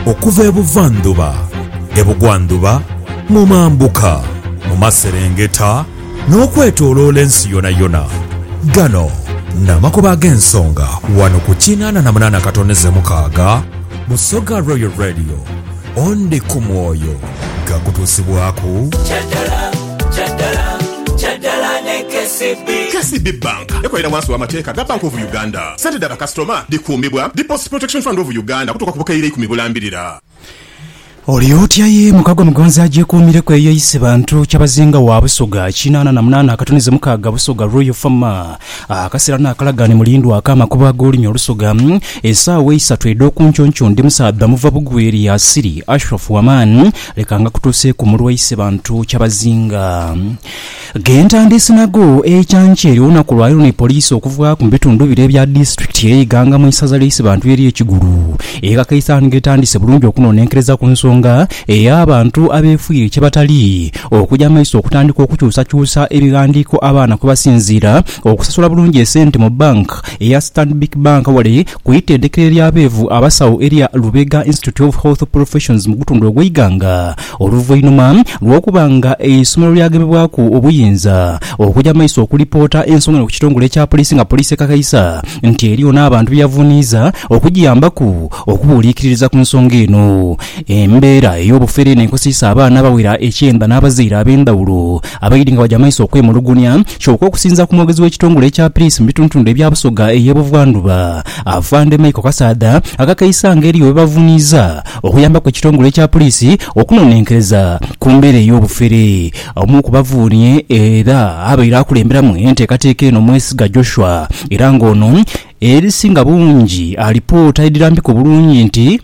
Okuva e buvandhuba, e bugwandhuba, mu mambuka, mu maserengeta, n'okwetooloola ensi yonayona. Gano n'amakubo ag'ensonga wano ku kinaana na munaana katoneze mukaaga Busoga Royal Radio. Ondi ku mwoyo gaakutuusibwaku. KCB Bank ekolera wansi w'amateeka ga Bank of Uganda. Sente dha bakasitoma dhikuumibwa Deposit Protection Fund of Uganda okutuuka ku bukaire ikumi bulambirira. Oli otya ye muka gwa Mugonzi agyekuumireku eyo eisi bantu Kyabazinga wa Busoga kinaana na munaana akatunize mukaaga Busoga Royal Farmer Akasera n'akalagaane Mulindwa ak'amakubo ag'olunyo Olusoga Esaawa eisatu edh'okunkyonkyoo Ndi musaadha muva bugwi eri Asiri Ashraf Waman Leka ngakutuuseeku mulwa eisi bantu Kyabazinga Ghentandisi nagho eikyankya ery'olunaku lwaleero ni poliisi okuvaaku mu bitundu bire ebya disitulikiti eye Iganga mu isaza lye Isibantu erye Kigulu eghakaisa nga etandise bulungi okunonenkereza ku nsonga eya bantu abefuire kyebatali okuja maiso okutandika okukyusakyusa ebighandiiko abaana kwebasinziira okusasula bulungi esente mu bank eya Stanbic Bank wale ku itendekero erya beevu abasawo erya Lubega Institute of Health Professions mu gutundu ogwe Iganga Oluvainhuma lw'okuba nga eisomero lyagemebwaku obuyinza, okuja mu maiso okulipoota ensonga eno ku kitongole ekya poliisi nga poliisi ekakaisa nti eriyo n'abantu byeyavuniiza okugiyambaku okubuuliikiririza ku nsonga eno. Embeera ey'obufere eno ekosiisa abaana abawera ekyenda n'abazaire ab'endhawulo abaidhi nga baja mu maiso okwemulugunya kyoka okusinzira ku mwogezi w'ekitongole ekya poliisi mu bitundutundu ebya Busoga ey'e Buvandhuba, Afande Michael Kasaadha akakaisa nga eriyo bebavuniiza okuyambaku ekitongole kya Poliisi okunonenkereza ku mbeera ey'obufere. Omu ku bavuuni era abaire akulemberamu enteekateeka eno Mwesiga Joshua era nga ono erisinga bungi alipoota edhirambika obulungi nti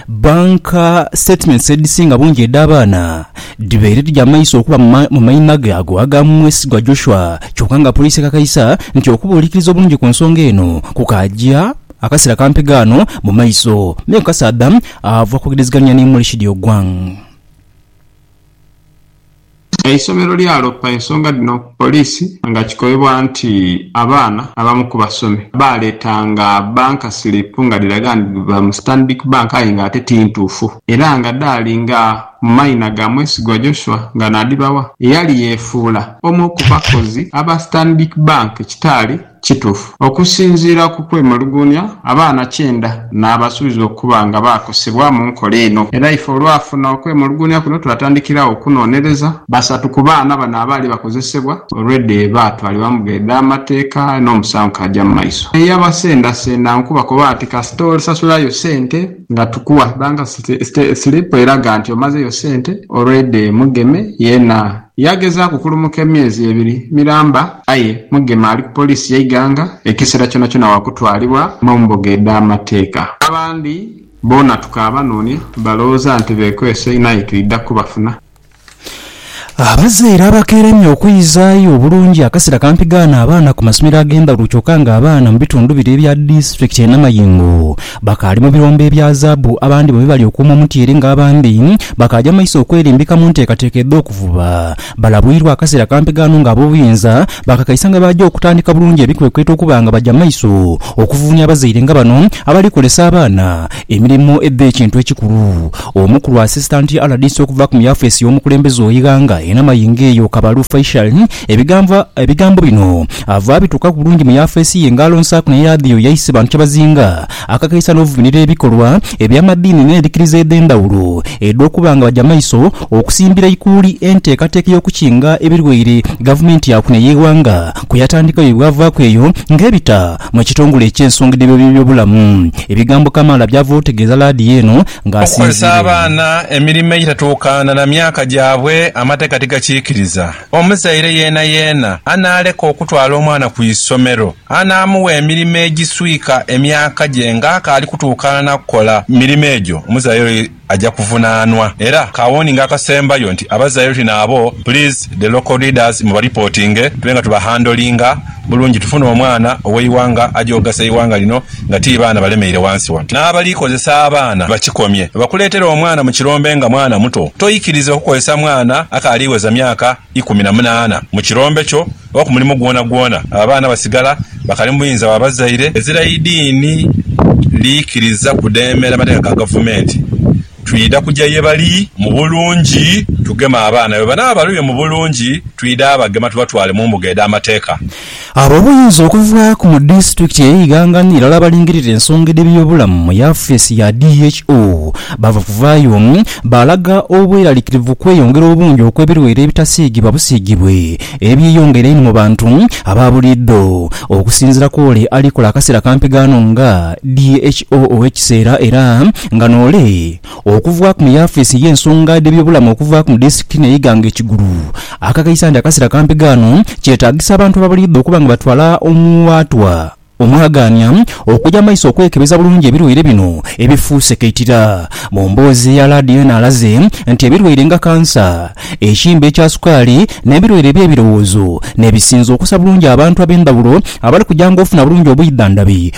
Bank statements edhisinga bungi edh'abaana dhibaire dhija mu maiso okuba mu maima ge ago aga Mwesigwa Joshua kyoka nga Poliisi ekakaisa nti okubuulikiriza obulungi ku nsonga eno kukaaja Akasera kampi ghano mu maiso, me kukasaadha ava kwogereziganhia ni Murishid Ogwang. Eisomero lyalopa ensonga dhino ku poliisi nga kikobebwa nti abaana abamu ku basomi baaleetanga banka silipu nga dhiraga nti dhiva mu Stanbic Bank aye ng'ate ti ntuufu era nga dhaali nga mu mayina ga Mwesigwa Joshua nga naadhibawa eyali yeefuula omu ku bakozi aba Stanbic Bank ekitaali kitufu. Okusinziira ku kwemuluguunia, abaana kyenda naabasuubizibwa okuba nga baakosebwa mu nkola eno era ife olwafuna okwemuluguunia kuno twatandikira agho okunonereza. Basatu ku baana bano abaali bakozesebwa already baatwalibwa mu mbuga edh'amateeka n'omusango kaaja mu maiso. Eyabasendasenda nkubakoba nti kasita osasulayo sente nga tukuwa bank slip eraga nti omazeyo sente already mugeme yeena. Yaagezaaku okulumuka emyezi ebiri miramba aye Mugema ali ku poliisi y'e Iganga, ekiseera kyonakyona wa kutwalibwa mu mbuga edh'amateeka. Abandi boona tukaabanoonia, balowooza nti beekwese inho aye twidha kubafuna. Abazaire abakeeremye okwizaayo obulungi akasera kampi gaana abaana ku masomero ag'endhaghulo kyoka nga abaana mu bitundu bire ebya disitulikiti y'e Namayingo Bakaali mu birombe ebya zaabu, abandi bo bibali okuuma omutyeere nga abandi bakaaja mu maiso okwerimbika mu nteekateeka edh'okuvuba. Balabwirwa akaseera kampi ghano nga ab'obuyinza bakakaisa nga baaja okutandika bulungi ebikwekweto okuba nga baja mu maiso okuvuunia abazaire nga bano abali kolesa abaana emirimo edh'ekintu ekikulu. Omukulu Asisitanti rdc okuva ku mu yafeesi y'omukulembeze ogh'eighanga e Namayingo eyo Kabalu Faishal Ebigambo ebigambo bino ava abituukaku bulungi mu yafeesi ye nga alonsaaku ne yaadiyo yaise bantu kyebazinga akakeisa n'ovumirira ebikolwa eby'amadiini n'endhikiriza edh'endhawulo edh'okuba nga baja maiso okusimbira eikuuli enteekateeka ey'okukinga ebirwaire gavumenti yaku n'eyeighanga kweyatandikawo ye bwavaaku eyo nga ebita mu ekitongole eky'ensonga edh'ebyobulamu. Ebigambo kamaala byava otegeeza laadiyo eno nga asinziire. Okukozesa abaana emirimo egitatuukana na myaka gyabwe amateeka tigakiikiriza. Omuzaire yeenayeena anaaleka okutwala omwana ku isomero, anaamugha emirimo egiswika emyaka gye ng'akaali kutuukaana na kukola mirimo egyo, omuzaire oyo aja kuvunaanwa. Era ka warning akasembayo nti abazaire tuli naabo, please the local leaders mu baripotinge tube nga tubahandlinga bulungi tufune omwana ow'eighanga aja okugasa eighanga lino nga ti baana balemeire ghansi ghano, n'abali kozesa abaana bakikomye. Bwebakuleetera omwana mu kirombe nga mwana muto, toikiriza kukozesa mwana akaali gheza myaka ikumi na munaana mu kirombe kyo oba ku mulimu gwonagwona. Abo abaana basigala bakali mu buyinza bwa bazaire. Ezira eidiini liikiriza kudheemera mateeka ga gavumenti, Twidha kuja ye bali mu bulungi tugeme abaana, bwe banaaba balwire mu bulungi, twidha bagema tubatwale mu mbuga edh'amateeka. Ab'obuyinza okuva ku mu disitulikiti ey'e Iganga ni irala abalingirira ensonga edh'ebyobulamu mu yafeesi ya DHO baava kuvaayo baalaga obweralikirivu kweyongera obungi okw'ebirwaire ebitasiigibwa busiigibwe ebyeyongera einho mu bantu aba buliidho. Okusinziira kw'ole ali kola akaseera ka mpigaano nga DHO ow'ekiseera era Nga noole, okuvaaku mu yaafiisi y'ensonga dh'ebyobulamu okuvaaku mu disitulikiti eno ey'eighanga e Kigulu, akakaisa nti akasera kampi ghano kyetaagisa abantu ababaliidwa okuba nga batwala omuwaatwa omwagaania okuja mu maiso okwekebeza bulungi ebirwaire bino ebifuuse kaitira. Mu mboozi ye ya laadiyo eno alaze nti ebirwaire nga kansa, ekimbe ekya sukaali n'ebirwaire eby'ebirowoozo n'ebisinze okusa bulungi abantu ab'endhawulo abali kujanga ofuna bulungi obwidhandhabi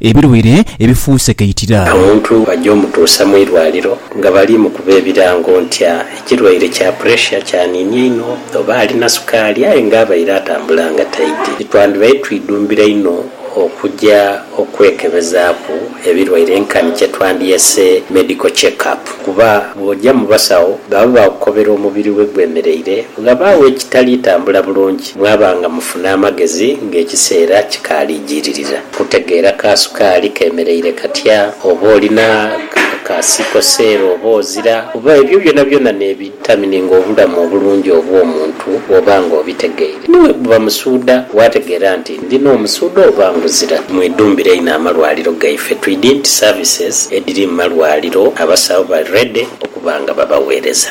Ebilwaire ebifuuse kaitira. Omuntu bajja omutuusa mu irwaliro nga bali mukuba ebirango ntya ekirwaire kya puresha kyaniini einho oba alina sukaali aye nga abaire atambula nga taidhi. Titwandibaire twidhumbira inho okuja okwekebezaaku ebirwaire nkani kyetwandyese medical check up kuba bwoja mu basawo baba bakukobera omubiri we gwemereire ghabagho ekitali tambula bulungi. Mwaba nga mufuna amagezi ng'ekiseera kikaali jiiririra. Kutegeera ka sukaali keemereire katya, oba oli na ka sikoseero oba ozira, oba ebyo byonabyona n'ebiditamininga obulamu obulungi obw'omuntu bw'oba ng'obitegeire. Ni bwe guba musuudha, waategeera nti ndi n'omusuudha oba nguzira. Mwidhumbire inho amalwaliro gaife twidi nti services edhiri mu malwaliro abasawo bali ready okuba nga babaweereza.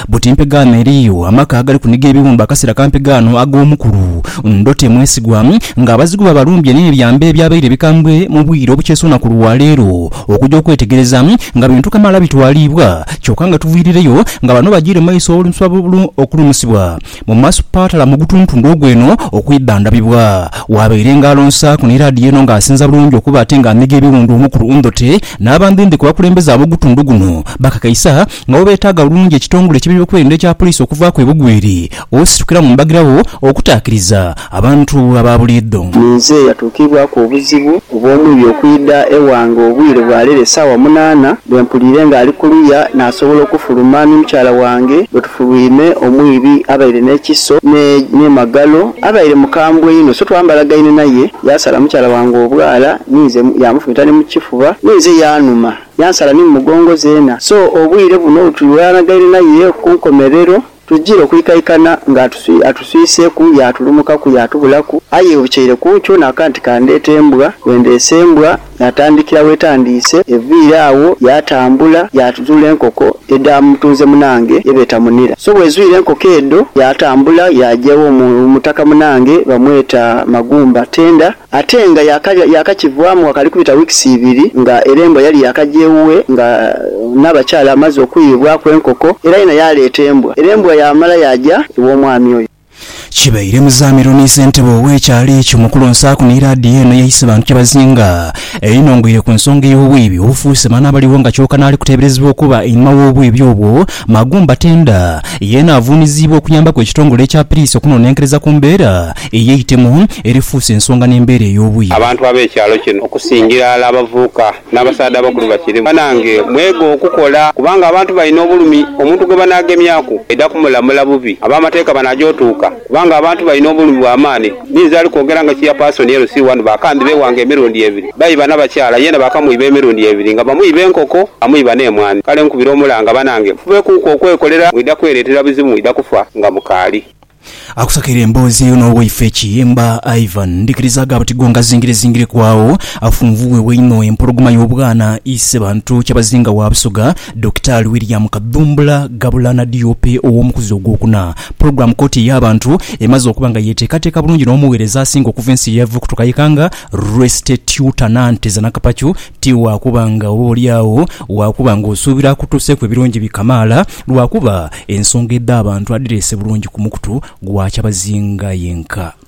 Buti mpegaano eriyo amaka agali kuniga ebiwumbe akaseera ka mpegaano ag'omukulu. Ndo temwesigwa, nga abazigu babalumbye n'ebyo ebyambe ebyabaire bikambwe mu bwire obukyesuuna ku lwa leero okuja okwetegereza nga bintu kamaala bitwaliibwa, kyoka nga tuviirireyo nga bano bajiire mu maiso olunswa lu okulumusibwa mu masipaatala mu gutuntundu ogw'eno okwidhandhabibwa. Waabaire nga alonsaaku ni laadiyo eno nga asinza bulungi okuba ate nga amiga ebiwundu omukulu Ndhote n'abandhendhe ku bakulembeze ab'ogutundu guno bakakaisa Nga bw'obeetaaga bulungi ekitongole ky'ebyokwerinda ekya poliisi okuvaaku ebugwiri, ositukira mu mbagirawo okutaakiriza abantu aba buliidho. Ninze eyatuukiibwaku obuzibu obw'omwibi okwidha ewange obwire bwa leero esaawa munaana, bwe mpuliire ng'ali kuluya naasobola okufuluma ni mukyala wange. Bwe tufulwime, omwibi abaire n'ekiso n'emagalo, abaire mukambwe inho so twambalagaine naye, yaasala mukyala wange obwala, ninze yaamufumita ni mu kifuba, ninze yaanuma. Yansala ni mu mugongo zeena. So obwire buno tuli weyanagaire naye ku nkomerero, tujire okwikaikana nga atuswiseku yaatulumukaku yaatubulaku, aye obukyeire ku nkyo nakoba nti kandeete embwa. Bwendeese embwa, yaatandikira wetandiise, eviire agho yaatambula yaatuzuula enkoko edha mutunze munange ye beeta Munira. So bwezwire enkoko edho, yaatambula yaaja ewo mutaka munange bamweta Magumba Tender. Ate nga yaakakivaamu ghakali kubita wiikisi ibiri nga era embwa yali yaakaja ewuwe nga n'abakyala amaze okuyiibwaku enkoko era yena yaaleeta embwa era embwa yaamala yaaja ew'omwami oyo. Kibaire Muzaamiru ni ssentebe ow'ekyalo ekyo Mukulu Nsaaku ni laadiyo eno yaise bantu kyebazinga einho ngoire ku nsonga ey'obwiibi obufuuse maanhi abaligho nga kyoka n'ali kuteeberezebwa okuba einhuma w'obwiibi obwo Magumba Tenda yeena avuuniziibwa okuyambaku ekitongole ekya Piriisi okunonenkereza ku mbeera eyeitemu erifuuse ensonga n'embeera ey'obuyi. Abantu ab'ekyalo kino okusingira ghala abavubuka n'abasaadha abakulu bakiri banange mwege okukola kubanga abantu balina obulumi omuntu gwebanaagemyaku baidha kumulamula bubi. Ab'amateeka banaja otuuka. Kubanga abantu balina obulumi bwa maani. Ninze ali kwogera nga Chairperson LC wano, baakambi beewanga emirundi ebiri. Baiba na bakyala, yeena baakamwiba emirundi ebiri nga bamwiba enkoko, bamwiba n'emwaani. Kale nkubira omulanga banange mufubekuuku okwekolera, mwidha kwereetera bizibu mwidha kufa nga mukaali. Akusakaire emboozi eyo n'owaife Kiyimba Ivan. Ndhikiriza gaaba ti go ngazingirezingireku agho. Afunvu wewe inho, empologoma y'obwana, Isebantu Kyabazinga wa Busoga. Dokitaali William Kadhumbula Gabulana DOP ow'omukuzi ogwokuna, Program Kkooti ey'abantu emaze okuba nga yeteekateeka bulungi n'omugheereza asinga okuva ensi ye yava okutuka eka nga Rwestetyuta Nanteza Nakapacu ti waakuba nga oba oli agho waakuba nga osuubira akutuuseeku ebirungi bi kamaala lwakuba ensonga edh'abantu adhireese bulungi ku mukutu gwa kyabazinga yenka.